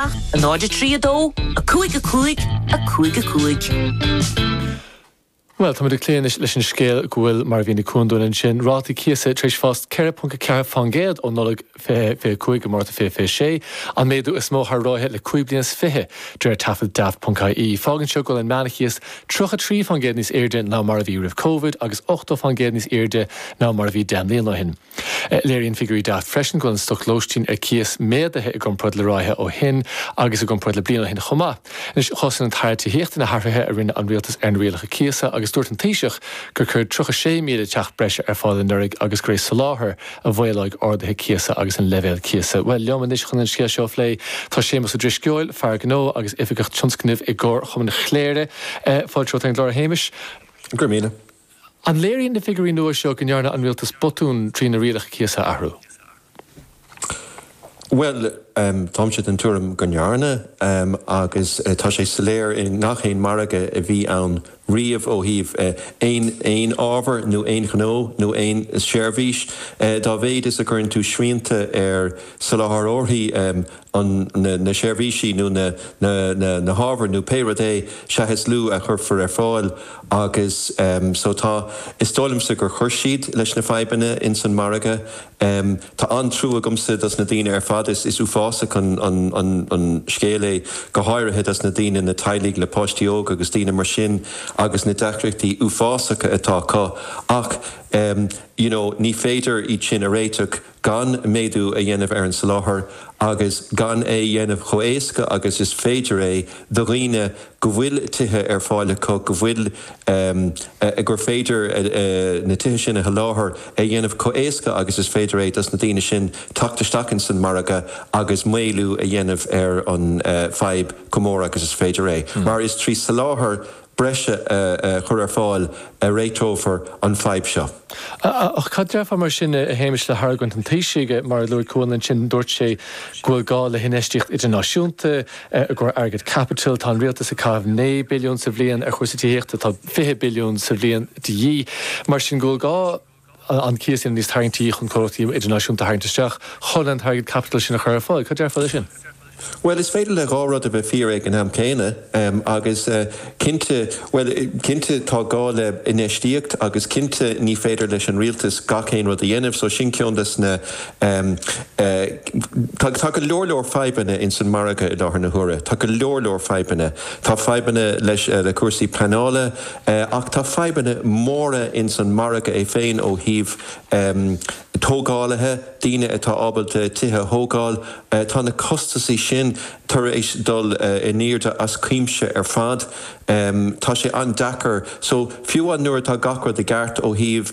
a 0 a 3 a 2 a 5 a 5 a 5 a 5. Bhuel, tá muid ag cloí anois leis an scéal go bhfuil, mar a mhínigh Cuan dúinn ansin, rátaí cíosa tar éis fás 4.4% ó Nollaig 2025 go Márta 2026, an méadú is mó thar ráithe le cúig bliana is fiche, de réir taifead Daft.ie. Fágann seo go bhfuil an meánchíos 33% níos airde ná mar a bhí roimh Covid agus 80% níos airde ná mar a bhí deich mbliana ó shin. Léiríonn figiúirí Daft freisin go bhfuil an stoc lóistín ar cíos méadaithe i gcomparáid le ráithe ó shin agus i gcomparáid le bliain ó shin chomh maith. Anois, chosain an tAire Tithíochta na hathruithe a rinne an rialtas ar na rialacha cíosa agus dúirt an Taoiseach gur cuireadh 36,000 teach breise ar fáil anuraidh agus gurb é soláthar a mhaolódh arduithe cíosa agus an leibhéal cíosa. Bhuel, liom anois chun an scéal seo a phlé tá Séamus Ó Drisceoil, fear gnó agus oifigeach tionscnaimh i gComharchumann Chléire, fáilte romhat ar an gclár, a Shéamais. Go raibh míle maith. An léiríonn na figiúirí nua seo go ndearna an rialtas botún trí na rialacha cíosa a athrú? Bhuel, táimse den tuairim go ndearna, agus tá sé soiléir i ngach aon margadh a bhí ann riamh ó thaobh aon ábhar nó aon ghnó nó aon seirbhís, dá mhéad is a gcuireann tú srianta ar soláthróirí an, na, na seirbhísí nó na, na, na, na hábhair nó pé rud é, sea, is lú a chuirfear ar fáil agus em so tá, is dóigh liomsa gur chuir siad leis na fadhbanna ins an margadh. Em tá an-trua agamsa dos na daoine ar fad, is, is uafásach an, an, an, an scéal é go háirithe dos na daoine, na teaghlaigh le páistí óga agus daoine mar sin agus na deacrachtaí uafásacha atá acu ach em you know ní féidir iad sin a réiteach. gan méadú a dhéanamh ar an soláthar agus gan é a dhéanamh chomh héasca agus is féidir é do dhaoine go bhfuil tithe ar fáil acu, go bhfuil, eh, gur féidir na tithe sin a sholáthar, é a dhéanamh chomh héasca agus is féidir é dos na daoine sin teacht isteach ins an margadh agus maolú a dhéanamh ar an, eh, fadhb chomh mór agus is féidir é. Mar is trí soláthar. breise a chur ar fáil a réiteofar an fadhb seo. Ach cad déarfá mar sin, a Shéamais, le hargóint an Taoisigh? Mar a luaigh Cuan ansin, dúirt sé go bhfuil gá le hinfheistíocht idirnáisiúnta a chuireann airgead caipitil. Tá an Rialtas ag caitheamh naoi billiún sa bhliain ar chúrsaí tithíochta, tá fiche billiún sa bhliain de dhíth. Mar sin, go bhfuil gá. an cíos a dhéanamh níos tarraingtí chun comhlachtaí idirnáisiúnta a tharraingt isteach chun an t-airgead caipitil sin a chur ar fáil. Cad déarfá le sin? Bhuel, is féidir le dhá rud a bheith fíor ag an am céanna, agus cinnte, bhuel, cinnte tá gá le infheistíocht agus cinnte ní féidir leis an rialtas gach aon rud a dhéanamh, so sin ceann dos na, tá go leor leor fadhbanna insan margadh i láthair na huaire, tá go leor leor fadhbanna, tá fadhbanna leis, le cúrsaí pleanála, Ach tá fadhbanna móra ins an margadh é féin ó thaobh tógálaithe, daoine atá ábalta tithe a thógáil, tá na costasaí sin tar éis dul in airde as cuimse ar fad. Tá sé an-deacair. So, fiú amháin nuair atá gach rud i gceart ó thaobh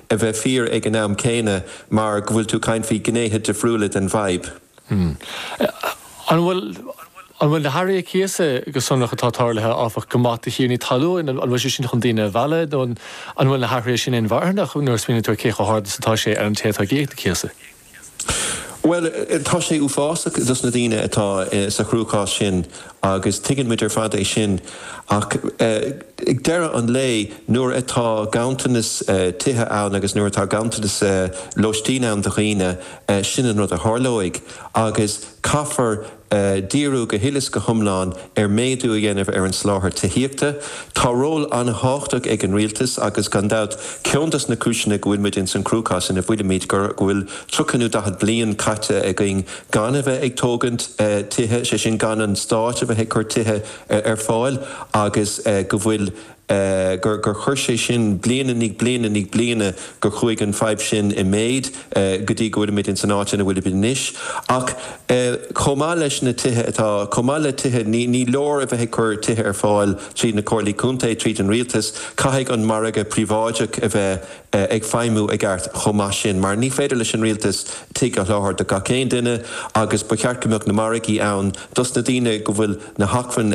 a bheith fíor ag an am céanna mar go bhfuil tú ag caint faoi ghnéithe difriúla den bhfadhb. An bhfuil An bhfuil na hathruithe cíosa go sonrach atá tarlaithe, áfach, go maith do thiarnaí talún? An bhfuil sé sin chun daoine a mhealladh nó an bhfuil na hathruithe sin inmharthanach nuair a smaoiníonn tú ar cé chomh hard is atá sé ar an té atá ag íoc an chíosa? Bhuel, tá sé uafásach dos na daoine atá sa chruachás sin agus tuigeann muid ar fad é sin ach ag deireadh an lae, nuair atá ganntanas tithe ann agus nuair atá ganntanas lóistín ann do dhaoine, sin an rud a tharlóidh agus caithfear díriú go huile is go hiomlán ar méadú a dhéanamh ar an soláthar tithíochta. Tá ról an-tábhachtach ag an rialtas agus gan dabht, ceann dos na cúiseanna go bhfuil muid ins an cruachás ina bhfuilimid go bhfuil tríocha nó daichead bliain caite againn gan a bheith ag tógaint tithe, sé sin gan an stát a bheith ag cur tithe ar fáil agus go bhfuil gur, gur chuir sé sin bliain i ndiaidh bliana i ndiaidh bliana, gur chuaigh an fadhb sin i méid go dtí go bhfuilimid ins an áit ina bhfuilimid anois. Ach chomh maith leis na tithe atá, chomh maith le tithe, ní, ní leor a bheith ag cur tithe ar fáil tríd na Comhairlí Contae, tríd an Rialtas, caithfidh an margadh príobháideach a bheith ag feidhmiú i gceart chomh maith sin mar ní féidir leis an Rialtas tigh a sholáthar do gach aon duine agus ba cheart go mbeadh na margaí ann dos na daoine go bhfuil na hacmhainní